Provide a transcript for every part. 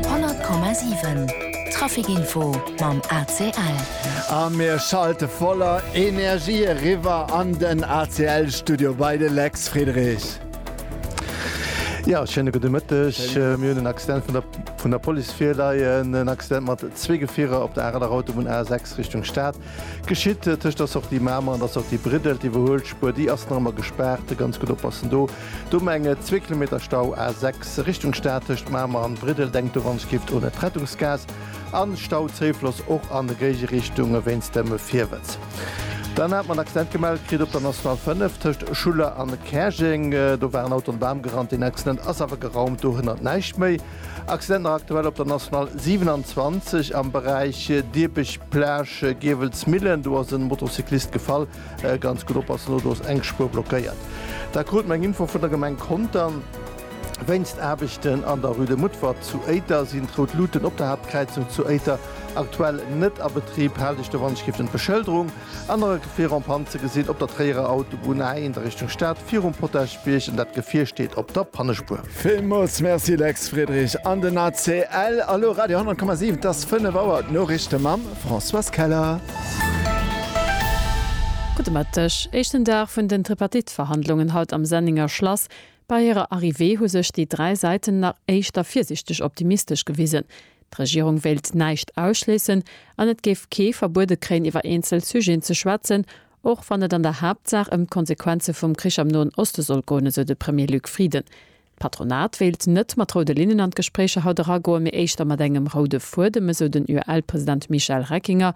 Honnert Komma siwen, Trafikinfo mam ACL. A mir schalte voller Energie eriwwer an den ACL-Studio bei de Lex Friedrich. Jo, schéine gudde Mëtteg. Mir hunn en Accident vun der vun der Police virleien. En Accident mat zwee Gefierer op der Areler Autobunn A6 Richtung Stad geschitt. Tëscht der Sortie Mamer an der Sortie Briddelt, iwwerhuelt Spuer, déi ass nach ëmmer gespaart. Ganz gutt oppassen do. Domenge, zwee Kilometer Stau, A6 Richtung Stad tëscht Mamer an Briddel, denkt do wann ech giff un et d'Rettungsgaas, an Stau Zéifloss och an réige Richtunge wéinst dem Virwëtz. Dann hat mer en Accident gemellt kritt op der National 5 tëscht Schuller an Käerjeng, do war en Auto an e Bam gerannt, deen Accident ass awer geraumt, dohënnert näischt méi. Accident nach aktuell op der National 27 am Beräich Diepech Plage Giewelsmillen, do ass e Motocyclist gefall. Ganz gutt oppassen, do ass eng Spuer blockéiert. Dat krut mer eng Info vun der Gemeng Contern. Wéinst Aarbechten an der Rue de Mutfert zu Éiter sinn d'Rout Luuten op der Haaptkräizung zu Éiter aktuell net a Betrib. Haalt iech doran, Skiffen d'Beschëlderung an der Rue fir Rond-Panne ze gesinn op der Tréierer Autobunn, A1 a Richtung Stad virum Potagebierg an dat Gefier steet op der Pannespuer. Villmools Merci Lex Friedrich an den ACL. Elo Radio 10,7, et ass 5 Auer, d'Noriichte mam Françoise Keller. Gudde Mëtteg. Éischten Dag vun den Tripartite-Verhandlungen haut am Sennenger Schlass. Bei hirer Arrivée hu sech déi dräi Säiten nach éischter virsiichteg optimistesch gewisen. D'Regierung wéilt näischt ausschléissen an et géif kee verbuede kréien iwwer eenzel Sujeten ze schwätzen, Och wann et an der Haaptsaach ëm d'Konsequenze vum Krich am Noen Oste soll goen, esou de Premier Luc Frieden. D'Patronat wéilt net mat roude Linnen an d'Gespréicher haut eragoen, mee éischter mat engem roude Fuedem, esou den UEL-President Michel Reckinger.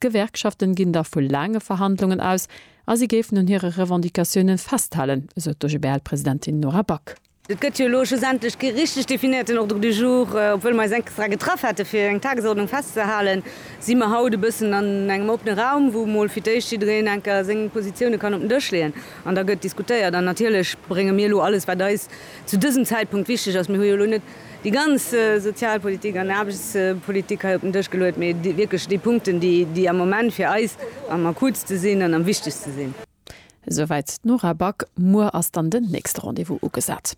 D'Gewerkschaften ginn da vu laange Verhandlungen aus a si géifen un hire Revendicatiounen festhalen, esou d'OGBL-Presidentin Nora Back. Et gëtt jo elo schlussendlech kee richteg definéierten Ordre du jour. Obwuel mer eis extra getraff hate fir eng Tagesordnung festzehalen, si mer haut e bëssen an engem oppene Raum, wou emol fir d'éischt jiddereen enker seng Positioune kann op den Dësch leeën an da gëtt diskutéiert. An natierlech brénge mir elo alles, wat eis zu dësem Zäitpunkt wichteg ass. Mir hu jo elo net déi ganz Sozialpolitik an Aarbechtspolitik hei op den Dësch geluet, mee wierklech déi Punkten, déi am Moment fir eis am akuutste sinn an am wichtegste sinn. Esouwäit d'Nora Back. Muer ass dann den nächste Rendez-vous ugesat.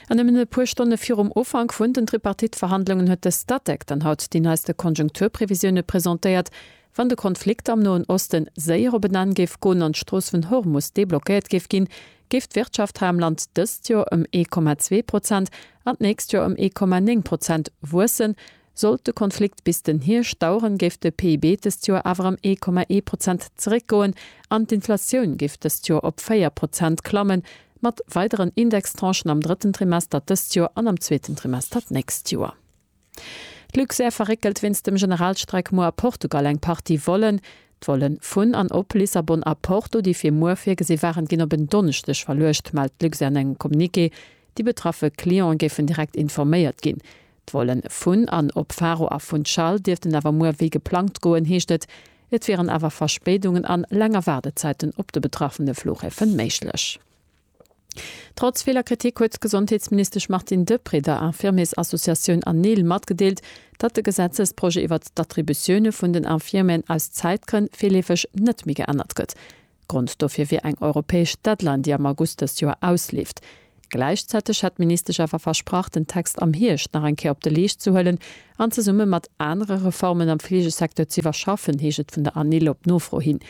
An nëmmen e puer Stonne virum Ufank vun den Tripartite-Verhandlungen huet de Statec dann haut déi neiste Konjunkturprevisioune presentéiert. Wann de Konflikt am Noen Osten séier op en Enn géif goen an d'Strooss vun Hormus deblockéiert géif ginn, géif d'Wirtschaft hei am Land dëst Joer ëm ee Komma zwee Prozent an d'nächst Joer ëm ee Komma néng Prozent wuessen, Sollt de Konflikt bis den Hierscht daueren, géif de PIB dëst Joer awer ëm ee Komma ee Prozent zeréckgoen an d'Inflatioun géif dëst Joer op véier Prozent klammen, mat weideren Indextranchen am drëtten Trimester dëst Joer an am zweeten Trimester d'nächst Joer. D'Luxair verréckelt wéinst dem Generalstreik muer a Portugal eng Partie Vollen. D'Volle vun an op Lissabon a Porto, déi fir muer virgesi waren, ginn op en Donneschdeg verluecht, mellt d'Luxair an engem Communiqué. Déi betraffe Clientë géifen direkt informéiert ginn. D'Vollen vun an op Faro a Funchal dierften awer muer wéi geplangt goen, heescht et. Et wieren awer Verspéidungen an länger Waardezäiten op de betraffene Flughäfe méiglech. Trotz viler Kritik huet d'Gesondheetsministesch Martine Deprez der Infirmiersassociatioun ANIL matgedeelt, datt de Gesetzesprojet iwwert d'Attributioune vun den Infirmieren aus Zäitgrënn virleefeg net méi geännert gëtt. Grond dofir wier eng europäesch Deadline, déi am August dëst Joer ausleeft. Gläichzäiteg hätt d'Ministesch awer versprach, den Text am Hierscht nach eng Kéier op de Leescht ze huelen an zesumme mat anere Reformen am Fleegesecteur ze iwwerschaffen, heescht et vun der ANIL op Nofro hin.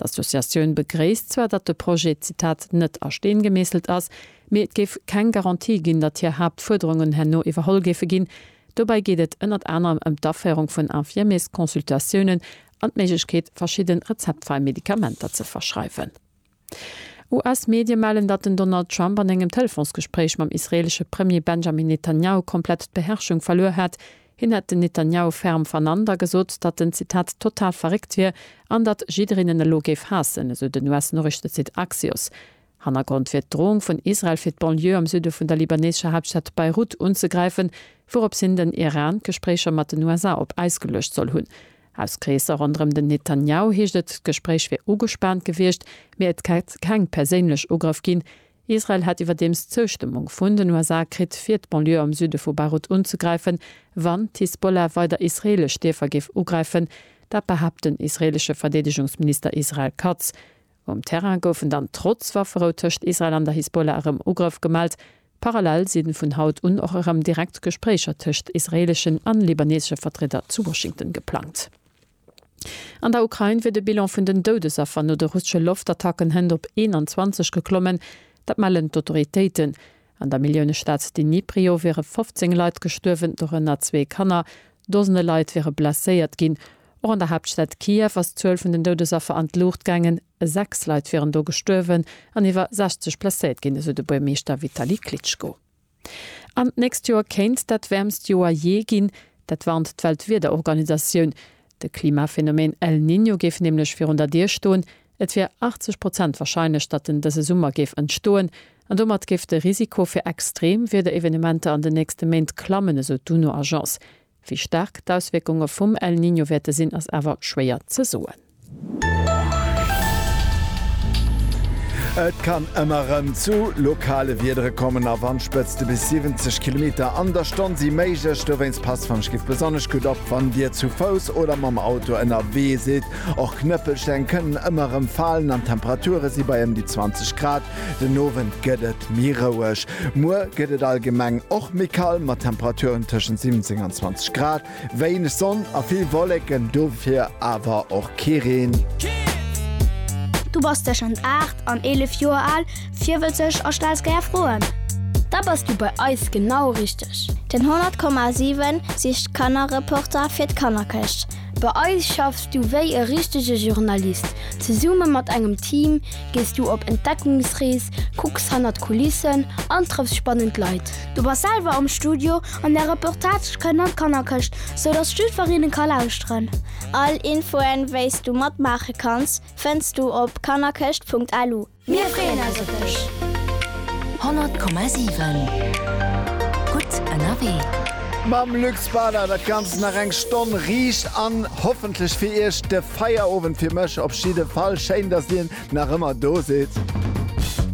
D'Associatioun begréisst zwar, datt de Projet, Zitat, net a Steen gemeesselt ass, mee et géif keng Garantie ginn, datt hir Haaptfuerderungen herno iwwerholl géife ginn. Dobäi geet et ënnert anerem ëm d'Aféierung vun Infirmiers-Consultatiounen an d'Méiglechkeet, verschidde rezeptfräi Medikamenter ze verschreiwen. US-Medie mellen, datt den Donald Trump an engem Telefonsgespréich mam israeelesche Premier Benjamin Netanjahu komplett d'Beherrschung verluer hätt. Hien hätt den Netanjahu ferm vernannt a gesot, datt en, Zitat, total verréckt wier an datt jiddereen en elo géif haassen, esou den US-Noriichtesite Axios. Hannergrond wier d'Droung vun Israel fir d'Banlieue am Süde vun der libaneescher Haaptstad Beirut unzegräifen, wourops hin den Iran d'Gespréicher mat den USA op Äis geluecht soll hunn. Aus Kreesser ronderëm den Netanjahu heescht et, d'Gespréich wier ugespaant gewiescht, mee et hätt keng perséinlech Ugrëff ginn. Israel hätt iwwerdeems d'Zoustëmmung vun den USA kritt, fir d'Banlieue am Süde vu Beirut unzegräifen, wann d'Hisbollah weider israeelesch Dierfer géif ugräifen. Dat behaapt den israeelesche Verdeedegungsminister Israel Katz. Um Terrain goufen dann trotz Wafferou tëscht Israel an der Hisbollah erëm Ugrëff gemellt. Parallel si vun haut un och erëm direkt Gespréicher tëscht israeeleschen an libanesesche Vertrieder zu Washington geplangt. An der Ukrain wier de Bilan vun den Doudesaffer no de russesche Loftattacken hënt op 21 geklommen. Dat mellen d'Autoritéiten. An der Milliounestad Dniprio wiere 15 Leit gestuerwen, dorënner zwee Kanner. Dosene Leit wiere blesséiert ginn. Och an der Haaptstad Kiew ass d'Zuel vun den Doudesaffer an d'Luucht gaangen. Sechs Leit wieren do gestuerwen an iwwer 60 blesséiert ginn, esou de Buergermeeschter Vitali Klitschko. An d'nächst Joer kéint dat wäermst Joer jee ginn. Dat warnt d'Weltwiederorganisatioun. De Klimaphenomeen El Niño géif nämlech virun der Dier stoen. Et wier 80 Prozent warscheinlech, datt en dëse Summer géif entstoen, an domat géif de Risiko fir extreem Wiederevenementer an den nächste Méint klammen, esou d'UNO-Agence. Wéi staark d'Auswierkunge vum El Niño wäerte sinn, ass awer schwéier ze soen. Et kann ëmmer rëm zu lokale Wiedere kommen a Wandspëtzte bis 70 Kilometer an der Stonn si méiglech. Dowéinst passt, wann ech giff, besonnesch gutt op, wann Dir zu Fouss oder mam Auto ënnerwee sidd. Och Knëppelsteng kënnen ëmmer erëm falen an d'Temperature si bei ëm déi 20 Grad. Den Owend gëtt et méi roueg. Muer gëtt et allgemeng och méi kal mat Temperaturen tëschent 17 an 20 Grad. Wéineg Sonn a vill Wolleken, dofir awer och kee Reen. Du bass tëschent 8 an 11 Joer al, virwëtzeg a stells gär Froen? Da bass du bei eis genau richteg! Den 100,7 sicht Kannerreporter fir d'Kannerkëscht. Bei eis schaffs du wéi e richtege Journalist. Zesumme mat engem Team gees du op Entdeckungsrees, kucks hannert d'Kulissen an trëffs spannend Leit. Du bass selwer am Studio an där Reportage kënnt an d'Kannerkëscht, sou dass jiddwereen e ka lauschteren. All Infoen, wéi s du matmaache kanns, fënns du op kannerkëscht.lu. Mir freeën eis op dech! 100,7 Gutt ënnerwee. Mam Luxpader dat ganzt nach eng Stonn riicht an hoffentlech fir iech de Feierowend, fir mech op jidde Fall. Schéin dass dir nach ëmmer do sidd.